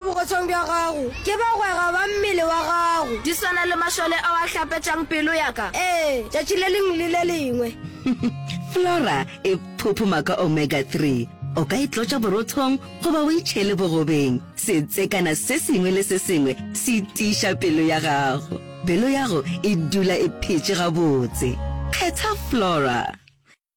Bogotshong bja gago ke bagwera ba mmele wa gago. Di swana le mašole ao a hlapetšang pelo ya ka, ee, tšatši le lengwe le le lengwe. Flora e phuphuma ka omega 3. O ka e tlotša borothong goba o e tšhele bogobeng. Setsekana se sengwe le se sengwe se tiiša pelo ya gago. Pelo ya go e dula e phetše gabotse. Kgetha Flora.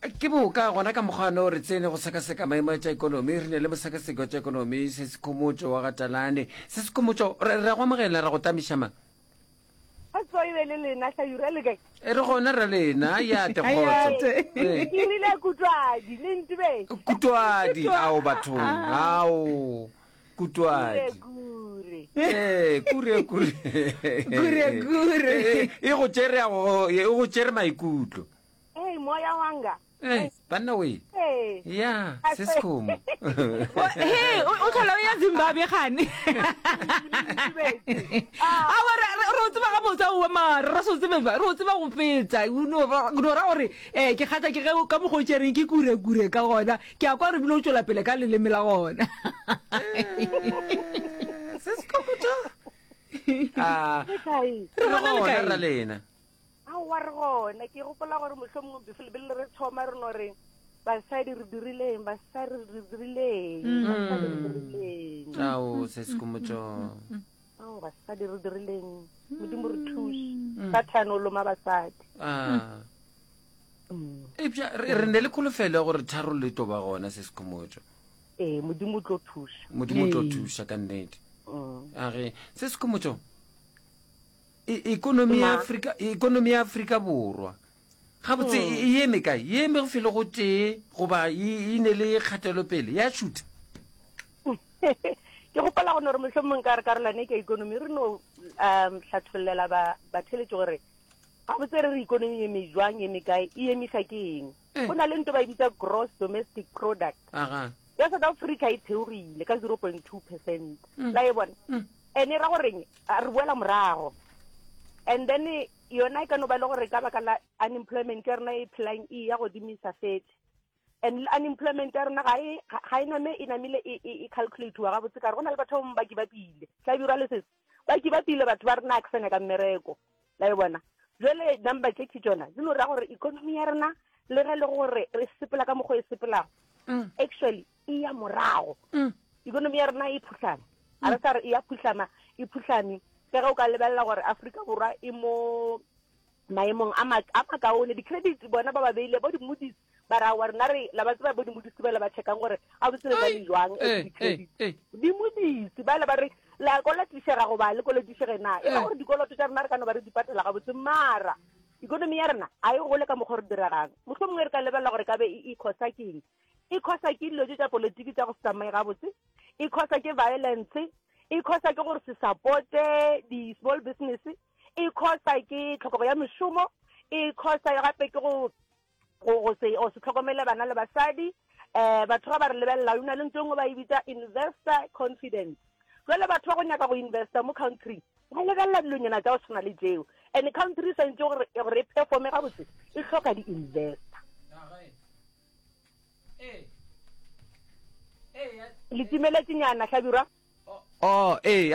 Ke boka gona ka mokgwa no re tsene go sekaseka maemo a tša ekonomi, re ne le mosekaseki wa tša ekonomi, Sesikhomotšo wa ga Talane. Sesikhomotšo, re, re a go amogela, ra go tamiša ma. Ga tswa e be le lena Hlajuru, a le kae? E re gona ra lena, ya te kgotso. Ee, ke rile Kutwadi, le ntube. Kutwadi, ao bathong, ao. Kutwadi. Gure, Eh, kure, kure. Gure, gure. Eh, eh, E go tšere ya go- e go tšere maikutlo. Hey, moya wanga. Eh, banna we. Hey. Ya, se se khomo. he o o tlhola o ya zimbabwe gane awa re o tseba ga botsa owe mare re se o tsebe ba- re o tseba go fetsa no ra gore um ke kgatha ke ge o- ka mokgwa o tšereng ke kurekure ka gona ke a kwa re bile o tšwela pele ka leleme la gona se se kokotša Ah, Le kae? re gona le Gona, kae? ra lena aowa re gona ke gopola gore motlho mongwe befele bele re thoma re no re basadi re dirileng basadi re dirileng basadi re dirileng ao se se komotšo ao basadi re dirileng modimo re thuse sathane o loma basadi Ah, epša re ne le kholofelo ya gore tharo le to ba gona se sekhomotšo ee modimo o tlo thuša modimo o tlo thuša ka nnete mm. age se sekhomotšo e, ekonomi ya afrika ekonomi ya afrika borwa gabotse mm. e eme kae e eme go fele go tee goba e, e ne le kgatelopele ya shutha ke gopela go ne gore motlhomong ka re karolwane ke ekonomi re no um tlhatlholela batheletše gore Gabotse re re ikonomi ye mejwang ye mekae e emisa ke eng? Eh. Go na le nto ba e bitsa gross domestic product. Aga. Ya South Africa e theogile ka 0.2 percent. Mm. La e bona? Mm. Ene ra goreng re boela morago. And then yona e ka no ba le gore ka baka la unemployment ya rona e phelang e ya godimisa fetse and unemployment ya rona ga e name e namile e, e, e calculatiwa gabotse kare go na le batho ba bangwe ba ke ba pile tla bjora le sese ba ke ba pile batho ba rena ke sanya ka mmereko la e bona jwale number tše ke tšona di no ra gore economy ya rena le ge le gore re sepela ka mokgwa e sepelago mm. actually e ya morago mm. economy ya rena e phuhlame a re sa re e ya phuhlama e phuhlame ka ge o ka lebelela gore aforika borwa e mo maemong a makaone di-credit bona ba ba beile bo di-moodies ba ra wa rena re la ba tseba bo dimodisi ba le ba checkang gore ga botse le na le jwang eh, eh, ditšhedi eh. dimodisi ba le ba re la kolatišega goba le kolatišege na e le gore dikoloto tša rena re ka no ba re di patela ga botse mara ikonomi ya rena a e gole ka mokgwa re diregang motlho mongwe re ka lebelela gore ka be e ikgosa e keng e khosa ke dilo tse tsa politiki tsa go se tsamaye gabotse e khosa ke violence e khosa ke gore se supporte di-small business e khosa ke tlhokego ya mešomo e khosa gape ke go go go se o se tlhokomele bana le basadi eh batho ga ba re lebelela yona le ntho engwe ba e bitsa investor confidence jale batho ba go nyaka go investa mo country ba lebelela dilonyana tsa go tshwana le tseo and country e santse gore gore e performe ga botse e tlhoka di-investor le timeletse nyana hlabirwa oh ee